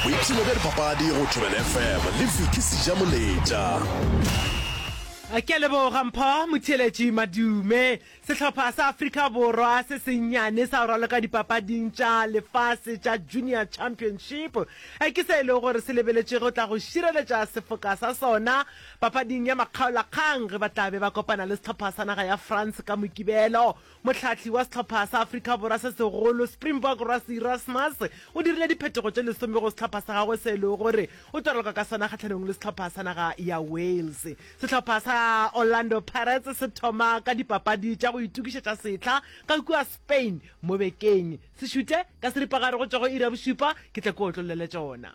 boipshino bja dipapadi go thobela fm le viki seja moletša Ke a leboga Mpho Motheeletši Madume. Sehlopha sa Afrika Borwa se sennyane sa go raloka dipapading tša lefase tša Junior Championship ke se e lego gore se lebeletše go tla go šireletša sefoka sa sona papading ya makgaolakgang ge ba tla be ba kopana le sehlopha sa naga ya France ka Mokibelo. Mohlahli wa sehlopha sa Afrika Borwa se segolo, Springbok Rassie Erasmus, o dirile diphetogo tše lesome go sehlopha sa gagwe se e lego gore o tlo raloka ka sona kgahlanong le sehlopha sa naga ya Wales. Sehlopha sa Orlando Pirates se thoma ka dipapadi tša go itokišetša sehla ka kua Spain mo bekeng. Se šute ka seripagare go tšwa go iri ya bošupa, ke tla kua o tlo llela tšona.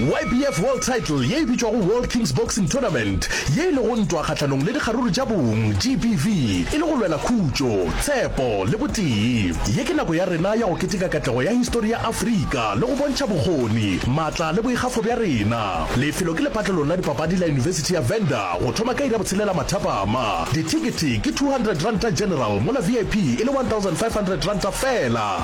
YBF World Title ye e bitšwago World Kings Boxing Tournament ye e lego ntwa kgahlanong le dikgaruru tša bong, GBV, e le go lwela khutšo, tshepo le botee. Ye ke nako ya rena ya go keteka katlego ya histori ya Afrika le go bontšha bokgoni, matla le boikgafo bja rena. Lefelo ke lepatlelong la dipapadi la Yunibesithi ya Venda go thoma ka iri ya botshelela mathapama. Dithekete ke R200 general mola VIP e le R1,500 fela.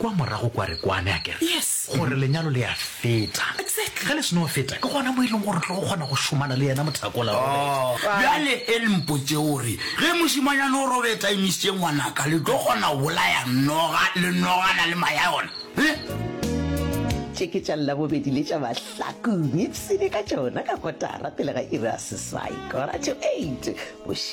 Kwa morago kwa re kwane, a ke re, Yes. gore lenyalo le a feta. Exactly. Ge le seno feta, ke gona mo e leng gore re tlo go kgona go šomana le yena mothakola Robert. Bjale e le mpotše o re, ge mošemanyana o Robert a emisitše ngwanaka, le tlo kgona go bolaya noga le nogana le maya yona? Eh? Tše ke tša Labobedi le tša Mahlakong, ipsene ka tšona ka kotara pele ga iri ya seswai, quarter to eight, bošego.